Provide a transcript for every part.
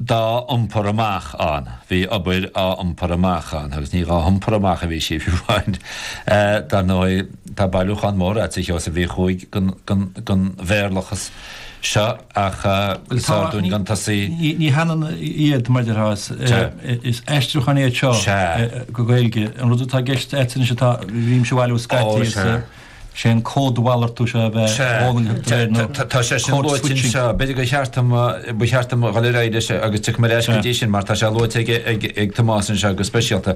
dá iompar amach ann. Bhí obair á iompar amach ann agus ní dhá hiompar amach a bhí sí, fiú amháin. Dar ndóigh, tá bailiúchán mór agat, a Sheosaimh Uí Chuaig, den Bhéarlachas seo ach is fearr dúinn gan tosaí. Ní hionann iad, mar a déarfá, is aistriúcháin iad seo go Gaeilge. An rud atá i gceist agat anois atá, bhímse a bhailiú scaití is. sé an códmhalartú seo a bheith dhólaintheach de réir na code switching. B'fhéidir gur cheart dom, ba cheart dom dhul ar aghaidh leis agus tiocfaidh mé ar ais go dtí sin mar tá sé luaite ag Tomás anseo go speisialta.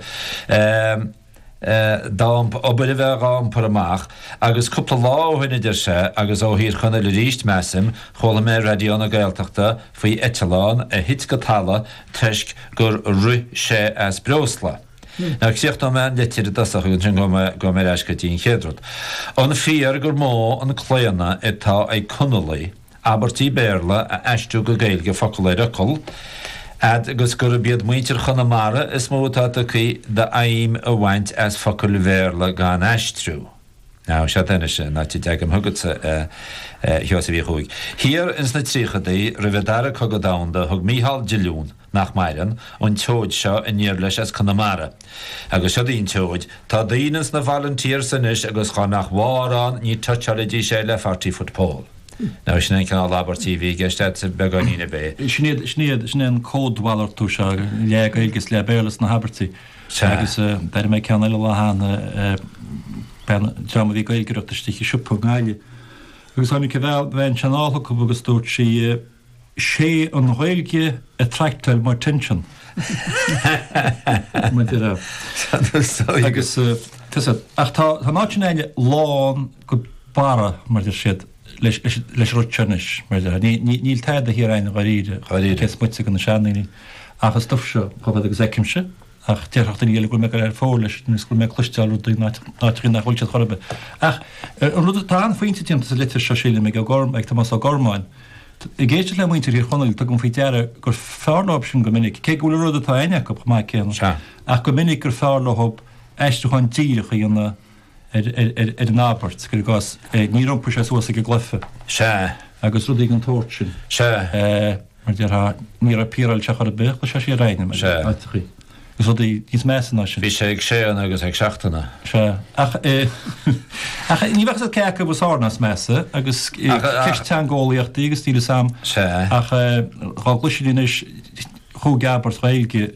Dá obair a bheith dhá iompar amach agus cúpla lá ó shin a deir sé agus ó Thír Chonaill arís measaim, chuala mé ar Raidió na Gaeltachta faoi eitleán a thit go talamh toisc gur rith sé as breosla. Now, críochnóidh mé an litir i dtosach agus ansin gabhfaidh mé ar ais go dtí an chéad rud. An fíor gur mó an claonadh atá ag Conallaigh abairtí Béarla a aistriú go Gaeilge focal ar fhocal, fhad agus gurb iad muintir Chonamara is mó atá tugtha d'fheidhm a bhaint as focail Bhéarla gan aistriú? Á, seod é anois, an áit a dteagaim chugatsa, a Sheosaimh Uí Chuaig. Thiar ins na tríochadaí, roimh an dara cogadh domhanda, thug Mícheál Diolún, nach maireann, an tseoid seo aniar leis as Conamara. Agus seo daoibh an tseoid, Tá daoine ins na volunteers anois agus chá nach mhórán ní touchálfaidís é le forty foot pole. Now, sin an cineál abairtí a bhí i gceist a'dsa, beagáinín ar bith. Sin iad, sin iad, sin é an códmhalartú seo, leath Gaeilge is leath Béarla sna habairtí. Sea. Agus d'airigh mé ceann eile an lá cheana, bean, dream a bhí ag Gaeilgeoireacht istigh i siopa i nGaillimh. Agus tháinig an bhean, bhean sin anall chucu agus dúirt sí, Sé an Ghaeilge a attractáil mo attention. Maidir le. Agus tusa, ach tá an áit sin againne lán go barra, mar a deir siad, leis, leis, leis an rud seo anois, mar a deir. Níl, níl tada thiar againn dháiríre, cé is moite de na seandaoine. Ach an stuf seo chomh fada agus fheicimse, ach déarfadh duine eile go bhfuil mé ag goil thar fóir leis agus go bhfuil mé ag cloisteáil rudaí in áiteachaí nach bhfuil siad chor ar bith. Ach an rud, tá an-phointe déanta sa litir seo sílim ag ag Tomás Ó Gormáin. Ag éisteacht le muintir Thír Chonaill tugaim faoi deara gur fearr leob sin go minic, cé go bhfuil an rud atá a'inn acu chomh maith céanna, ach go minic gur fearr leob aistriúchán díreach a dhéanamh ar an abairt, cuir i gcás, níor iompaigh sé suas ag an gcluiche. Sea. Agus rudaí den tsórt sin. Sea. Mar a déarfá, níor appearáil sé ar chor ar bith, chuir sé siar éinne, mar a fheicfeá, agus rudaí níos measa ná sin. Bhí sé ag séanadh agus ag seachtanadh. Sea. Ach ní bheadh a fhios cé acu is fearr ná is measa agus ceist teangeolaíochta í agus níl a fhios a'm ach dhá gcloisfinn anois chúig abairt Ghaeilge,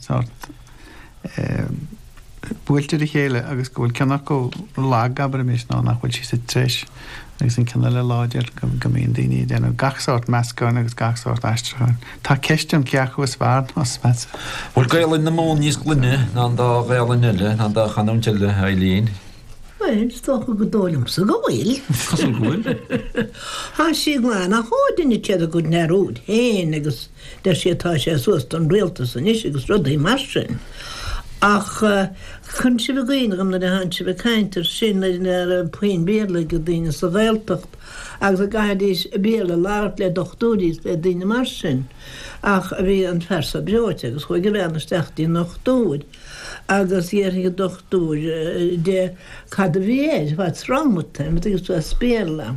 sórt eh buailte ar a chéile agus go bhfuil ceann acu lag abraimis nó nach bhfuil sí sa treis agus an ceann eile láidir go go mbíonn daoine ag déanamh gach sórt meascáin agus gach sórt aistriúcháin. Tá ceist ann cé acu is fearr nó is measa. Bhfuil Gaelainn na Mumhan níos glaine ná an dá Ghaelainn eile, ná an dá chanúint eile, a Eileen? Bhuel, is dócha gur dóigh liomsa go bhfuil. Cosúil go bhfuil. Tá sí glan ach ó duine céad acu ina rud féin agus. Deir siad tá sé suas don rialtas anois agus rudaí mar sin. Ach chuir sibh i gcuimhne dhom nuair a bhí sibh ag caint ar sin nuair ná raibh puinn Béarla ag daoine sa Ghaeltacht agus a gcaithfidís Béarla labhairt le dochtúirí is le daoine mar sin. Ach bhí an fear seo breoite agus chuaigh a bhean isteach dtí an ndochtúir agus d'fhiafraigh an dochtúir di cad a bhí air, what's wrong with him, agus as Béarla.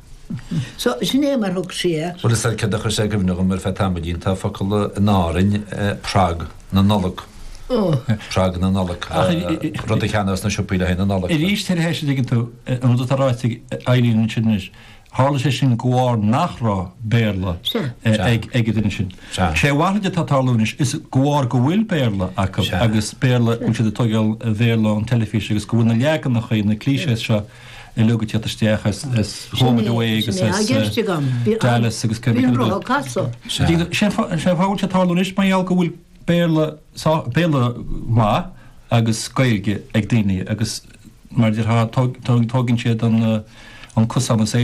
So, sin é mar thug sí air. Bhuel, is ar céard a chuir sé i gcuimhne dhom ar feadh tamaillín, tá focal in Árainn, prag na Nollag. Oh. Prag na Nollag. Rud a cheannaigh sna siopaí le haghaidh na Nollag. Arís tar éis a dtuigeann tú an rud atá ráite ag Eileen ansin anois. Tharla sé sin de bharr nach raibh Béarla ag an duine sin. Sé a mhalairt atá ag tarlú anois, is de bharr go bhfuil Béarla acu agus Béarla, go bhfuil siad ag tógáil Bhéarla ón teilifís agus go bhfuil na leaganacha, na clichés seo, uilig ag tíocht isteach as Home and Away agus as Dallas agus Kerry Canute's? Sé an fáth atá sé ag tarlú anois mar gheall go bhfuil Béarla maith agus Gaeilge ag daoine agus mar déarfá tógann siad an cosán is é